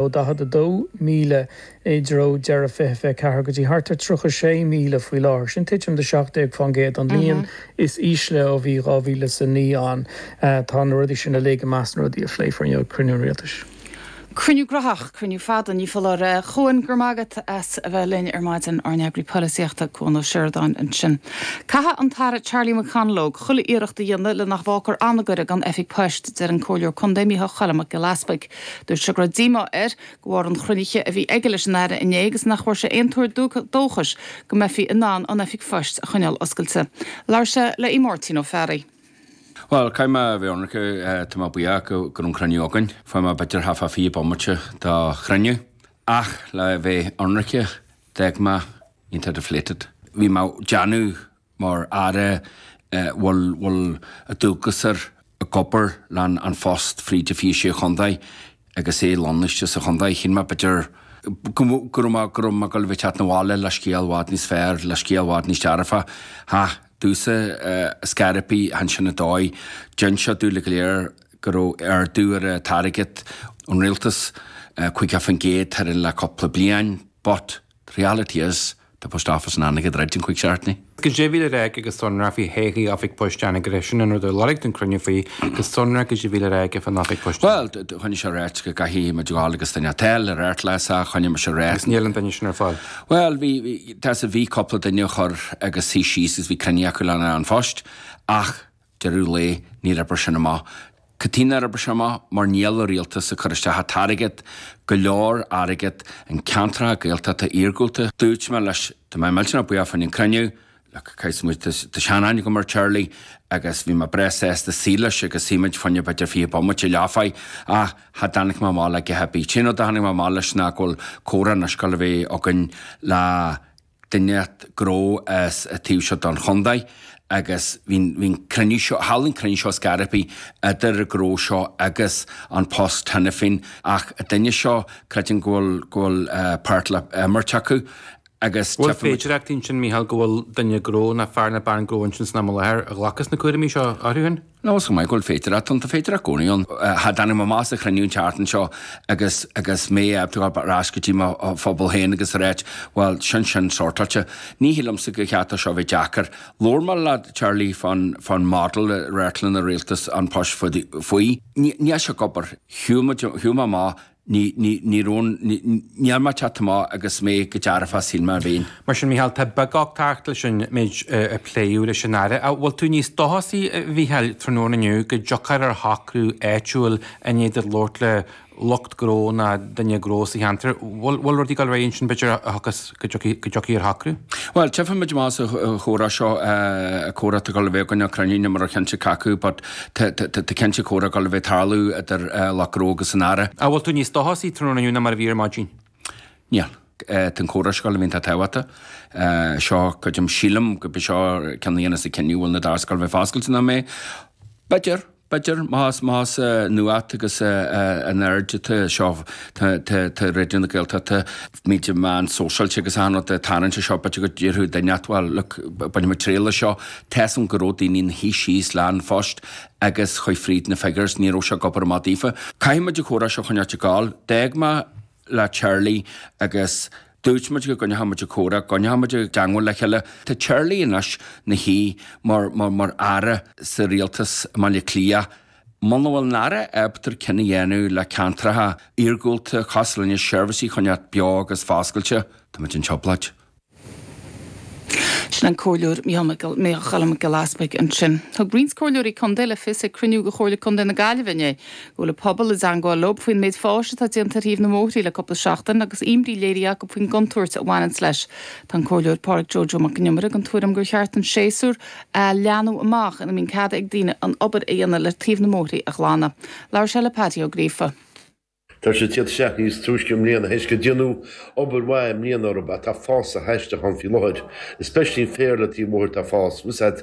ó 42,000 i dtreo deireadh 2024 go dtí thart ar 36,000 faoi láthair, sin titim de 17% an líon is ísle ó bhí 2009 ann. Tá na rudaí sin uilig i measc na rudaí a phléifear inniu ag cruinniú an Rialtais. Cruinniú graitheach, cruinniú fada, ní foláir. Cuán, go raibh maith agat as a bheith linn ar maidin, ár nEagraí Polaitíochta, Cuán Ó Seireadáin ansin. Caithfidh an tAire Charlie McConalogue chuile iarracht a dhéanamh le nach bhfágfar Anagaire gan oifig poist, deir an Comhairleoir Contae Micheál Choilm Mac Giolla Easpaig. Dúirt sé go raibh díomá air de bharr an chruinnithe a bhí aige leis an Aire inné agus nach bhfuair sé aon tuar dóchais go mbeifí in ann an Oifig Phoist a choinneáil oscailte. Labhair sé le Máirtín Ó Fearraigh. Bhuel, caithfidh mé a bheith ionraice, tá mé buíoch go raibh an cruinniú againn. Fuair mé b'fhéidir thart fá fiche bomaite de chruinniú. Ach le bheith ionraice, d'fhág mé iontach deflated. Bhí mé ag déanamh mar Aire a bhfuil, bhfuil dualgas air ag obair leis An Post fríd na fiche sé chontae agus é lonnaithe sa chontae. Shíl mé b'fhéidir go go raibh mé go raibh mé ag gabháil a bheith ag teacht 'na bhaile le scéal i bhfad níos fearr le scéal i bhfad níos dearfaí. Cha dtig leis, is cuma, chan sin an dóigh. D'inseodh sé dúinn go léir go raibh ardú ar an airgead ón Rialtas, 50% tharainn le cúpla bliain, but, The reality is, tá Post Office in Anagaire ag druid i gcionn cúig seachtaine. Goidé a bhí le rá aige go sonrach faoi thodhchaí Oifig Poist Anagaire, sin an rud ar lorg tú an cruinniú faoi go sonrach goidé a bhí le rá aige fán Oifig Poist Anagaire. Bhuel, choinnigh sé ag ráit go gcaithfimid gabhail agus duine a fháil ar airtléis as a choinne mise réidh. Agus níl an duine sin ar fáil. Bhuel, bhí, bhí, tá a fhios agat bhí cúpla duine a chur agus shuigh síos agus bhí cruinniú acu leis An Post ach, deireadh an lae níor oibrigh sin amach. Cad chuige nár oibrigh sin amach? Mar níl an Rialtas ag cur isteach an t-airgead, go leor airgead, i gceantracha Gaeltachta iargúlta. Dúirt mé leis, tá mé millteanach buíoch faoin chruinniú, like, caithfimid, tá, tá sean-aithne agam ar Charlie agus bhí mé breá sásta suí leis agus shuigh muid fá choinne b'fhéidir fiche bomaite leathuair ach cha dtáinig mé amach le a dhath ar bith. An t-aon rud a tháinig mé amach leis ná go bhfuil comhrá anois le bheith againn le duine gnó as a taobh seo den chontae agus bhí'n cruinniú seo, tharla an cruinniú seo, is cuma, idir an gnó seo agus An Post cheana féin ach an duine seo creidim go bhfuil, go bhfuil páirt le himirt acu agus Bhuel tiocfaidh muid. An bhfuil féidearthacht ansin Micheál go bhfuil duine gnó nó fear nó bean gnó ansin san am i láthair a ghlacas na cúramaí seo. air féin? Nó is cuma go bhfuil féidearthacht ann, tá féidearthacht i gcónaí ann. Cha dtáinig mé amach as an chruinniú an tseachtain seo agus agus mé ábalta gabháil ar ais go dtí mo phobal féin agus a ráit, bhuel, sin sin sortáilte. Ní shílimse go gcaithfidh seo a bheith deacair. Labhair mé le Charlie fán fán model atá ag an Rialtas An Post faoi. Níl sé ag obair. Shiúil muid, shiúil mé amach. Ní, ní, ní raibh an, ní, ní raibh mé ceart chomh maith agus chomh dearfach is a shíl mé a bheinn. Mar sin, Mícheál, tá beaguchtacht leis an méid a pléadh leis an Aire. An bhfuil tú níos dóchasaí, a Mhícheáil, tráthnóna inniu go dtiocfar ar shocrú áitiúil i ndiaidh duit labhairt le lucht gnó ná duine gnó sa cheantar? An bhfuil, an bhfuil rud ag dul ar aghaidh ansin b'fhéidir a thiocfas. go dtiocfaidh ar shocrú. Bhuel, tchífimid amach as an chomhrá seo, comhrá atá ag gabháil a bheith againn nó cruinniú níl mé cinnte cé acu, but tá cinnte comhrá ag gabháil a bheith ag tarlú idir lucht gnó agus an Aire. An bhfuil tú níos dóchasaí tráthnóna inniu ná mar a bhí ar maidin? Níl. Tá an comhrá seo ag gabháil a bheith an-tábhachtach. Seo, creidim, sílim gurb é seo an ceann a dhéanfas an cinneadh an bhfuil na doirse ag gabháil a bheith foscailte nó nach mbeidh. B'fhéidir. B'fhéidir, más, más nuacht agus an aird atá anseo, tá, tá, tá Raidió na Gaeltachta, muid ar meáin sóisialta agus achan rud ag tarraingt air seo, b'fhéidir go déarfadh duine inteacht, bhuel, look, bainfimid triail as seo. Tá seans go raibh daoine ina shuí síos le An Post agus chuaigh fríd na figures, ní raibh sé ag obair amach daofa. Caithfimid an comhrá seo a choinneáilt ag gabháil. D'fhág mé le Charlie agus. Dúirt muid go gcoinneochadh muid an comhrá, go gcoinneochadh muid i dteangmháil le chéile. Tá Charlie anois 'na shuí mar Aire sa Rialtas i mBaile Átha Cliath. Muna bhfuil an Aire ábalta cinneadh a dhéanamh le ceantracha iargúlta, cosúil linne seirbhísí a choinneáilt beo agus foscailte, tá muid i dtrioblóid. Sin an Comhairleoir Mícheál Mac Giolla Easbuig ansin. Thug roinnt Comhairleoirí Contae le fios ag cruinniú de Chomhairle Contae na Gaillimhe inné go bhfuil an pobal i dteangmháil leob faoin méid fáis atá déanta ar thaobh na mbóithrí le cúpla seachtain agus imní léirithe acu faoin gcontúirt a bhaineanns leis. Tá an Comhairleoir Pádraig Joe Joe Mac an Iomaire den tuairim gur cheart an séasúr a leathnú amach ina mbíonn cead ag daoine an obair a dhéanamh le taobh na mbóithrí a ghlanadh. Labhair sé le Paddy Ó Gríofa. Tá sé cupla seachtain níos túisce i mbliana théis gur deineadh obair mhaith i mbliana orthu ach tá fás aisteach ann faoi láthair. Especially an féar le taobh an bhóthair atá ag fás. Usaid